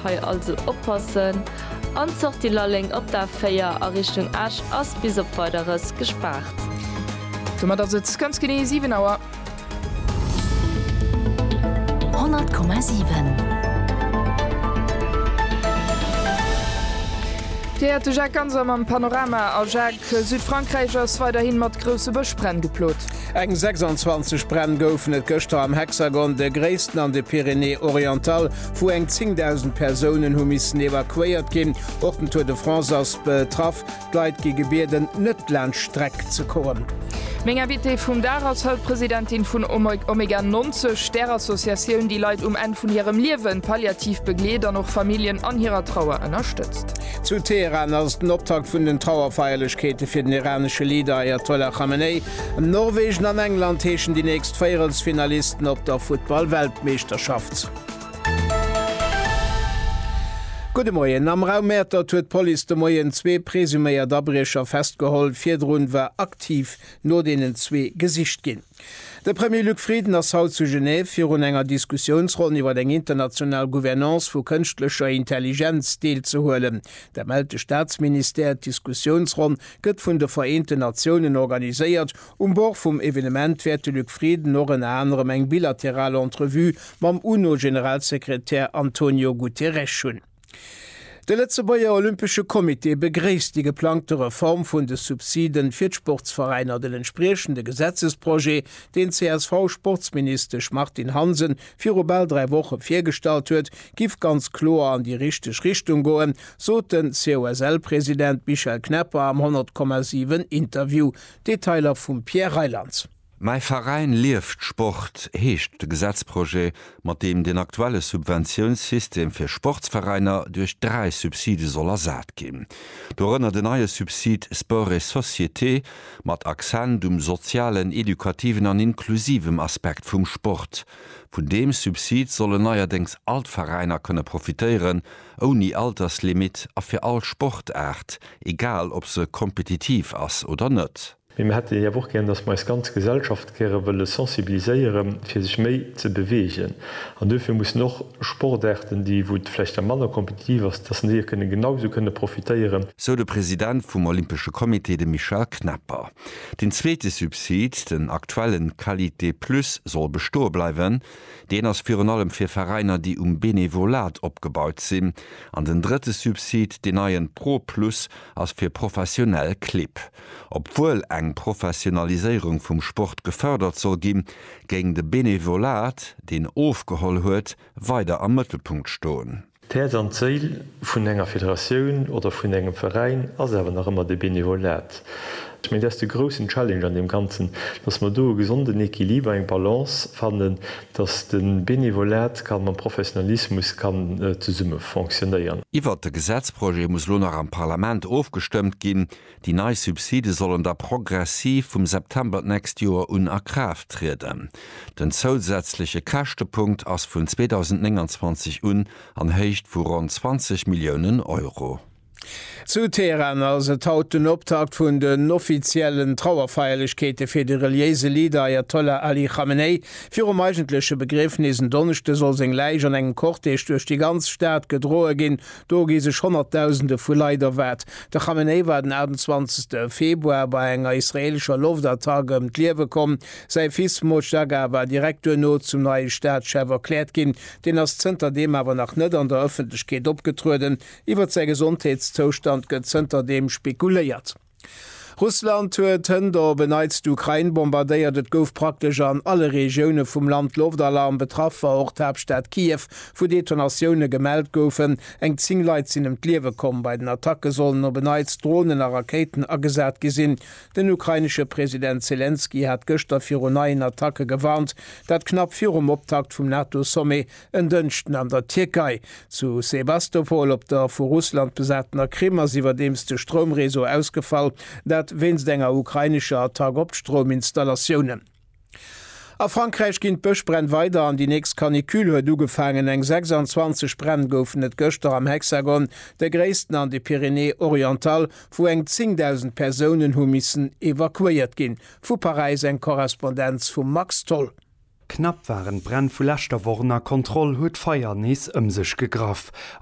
Hei also oppassen an d'Sortie Lalleng op d'A4 a Richtung Esch ass bis op Weideres gespaart. Domat ass et ganz genee 7 Auer. 100,7. Dir häert de Jacques Ganser mam Panorama. A Jacques, Südfrankräich ass weiderhi mat grousse Bëschbränn geplot. Eng 26 Bränn goufen et gëschter am Hexagon, de gréissten an de Pyrénées-Orientales. wou eng 10.000 Persounen hu missen evakuéiert ginn. Och den Tour de France ass betraff. D'Leit gi gebieden, net laanscht d'Streck ze kommen. Meng Invitée vum Dag ass haut d'Presidentin vun Omega 90, där Associatioun, déi Leit um Enn vun hirem Liewen palliativ begleet an och Familljen an hirer Trauer ënnerstëtzt. Zu Teheran ass den Optakt vun den Trauerfeierlechkeete fir den iranesche Leader Ayatollah Khamenei. Norwegen an England heeschen déi nächst Véierelsfinalisten op der Futtball-Weltmeeschterschaft. Gudde Moien. Am Raum Mäertert huet d'Police de Moien zwee presuméiert Abriecher festgeholl. Virdrun war aktiv no deenen zwee gesicht ginn. De Premier Luc Frieden ass haut zu Genève virun enger Diskussiounsronn iwwer eng international Gouvernance vu kënschtlecher Intelligenz deelzehuelen. Dat mellt de Staatsministère. D'Diskussiounsronn gëtt vun de Vereenten Natiounen organiséiert Um Bord vum Evenement wäert de Luc Frieden och ënner anerem eng bilateral Entrevue mam UNO-Generalsekretär Antonio Guterres hunn. De Lëtzebuerger Olympesche Comité begréisst déi geplangte Reform vun de Subsiden fir d'Sportsveräiner, den entspriechende Gesetzesprojet, deen d'CSV-Sportsministesch Martine Hansen viru bal dräi Woche virgestallt huet, giff ganz kloer an déi richteg Richtung goen, sot den COSL-President Michel Knepper am 100,7 Interview. Detailer vum Pierre Reylands. Mäi Veräin lieft Sport, heescht de Gesetzprojet, mat deem den aktuelle Subventiounssystem fir Sportsveräiner duerch dräi Subside soll ersat ginn. Dorënner den neie Subsid Sport et société, mat Accent um sozialen, edukativen an inklusivem Aspekt vum Sport. Vun deem Subsid sollen neierdéngs all d'Veräiner kënne profitéieren, ouni Alterslimitt a fir all Sportaart, egal ob se kompetitiv ass oder net. Mee mir hätten awer och gären, dass mer eis ganz Gesellschaft gäre wëlle sensibiliséieren, fir sech méi ze beweegen. An duerfir mussen och Sportaarten, déi, wou et vläicht da manner kompetitiv ass, dass en déier kënne genausou kënne profitéieren. Sou de President vum Olympesche Comité, de Michel Knepper. Deen zweete Subsid, den aktuellen Qualité Plus, soll bestoe bleiwen. Deen ass virun allem fir Veräiner, déi um Benevolat opgebaut sinn. An den drëtte Subsid, deen neien Pro Plus, ass fir professionell Clibb. Obwuel eng Professionaliséierung vum Sport gefërdert soll ginn, géing de Benevolat, deen ofgeholl huet, weider am Mëttelpunkt stoen. D'Häerz an d'Séil vun enger Federatioun oder vun engem Veräin ass awer nach ëmmer de Benevolat. Ech mengen, dat ass de groussen Challenge an deem Ganzen, dass mer do e gesonden Equiliber, eng Balance fannen, dass de Benevolat ka mam Professionalismus kann zesumme fonctionnéieren. Iwwert de Gesetzprojet muss elo nach am Parlament ofgestëmmt ginn. Déi nei Subside sollen da progressiv vum September d'nächst Joer un a Kraaft trieden. Den zousätzleche Käschtepunkt ass vun 2029 un an Héicht vu ronn 20 Milliounen Euro. Zu Teheran ass et haut den Optakt vun den offiziellen Trauerfeierlechkeete fir de reliéise Leader Ajatollah Ali Khamenei. Virum eigentleche Begriefnis en Donneschde soll seng Läich an engem Cortège duerch déi ganz Stad gedroe ginn, Do gi sech Honnertdausende vu Leit erwaart. De Khamenei war den 28 Februar bei enger israeelescher Loftattack ëm d'Liewe komm. Säi Fils Mojtaga war direkt duerno zum neie Staatschef erkläert ginn. Deen ass zënter deem awer nach net an der Ëffentlechkeet opgetrueden. Iwwer säi Gesondheetszoustand gëtt zënter deem spekuléiert. Russland huet hënt op e Neits d'Ukrain bombardéiert. Et gouf praktesch an alle Regioune vum Land Loftalarm. Betraff war och d'Haaptstad Kiew, wou Detonatioune gemellt goufen. Eng 10 Leit sinn ëm d'Liewe komm. Bei den Attacke sollen op e Neits Dronen a Rakéiten agesat gi sinn. Den ukrainesche President Selenskyj hat gëschter viru neien Attacke gewarnt, dat knapp virum Optakt vum NATO-Sommet En Dënschden an der Tierkei. Zu Sebastopol op der vu Russland besatener Krim ass iwwerdeems de Stroumreseau ausgefall, dat wéinst enger ukrainescher Attack op d'Strouminstallatioune. A Frankräich ginn d'Bëschbränn weider an déi nächst Canicule huet ugefaangen. Eng 26 Bränn goufen et gëschter am Hexagon, de gréissten an de Pyrénées-Orientales, wou eng 10.000 Persounen hu missen evakuéiert ginn. Vu Paräis eng Korrespondenz vum Max Tholl. Knapp waren d'Bränn vu leschter Woch ënner Kontroll, huet d'Feier nees ëm sech gegraff.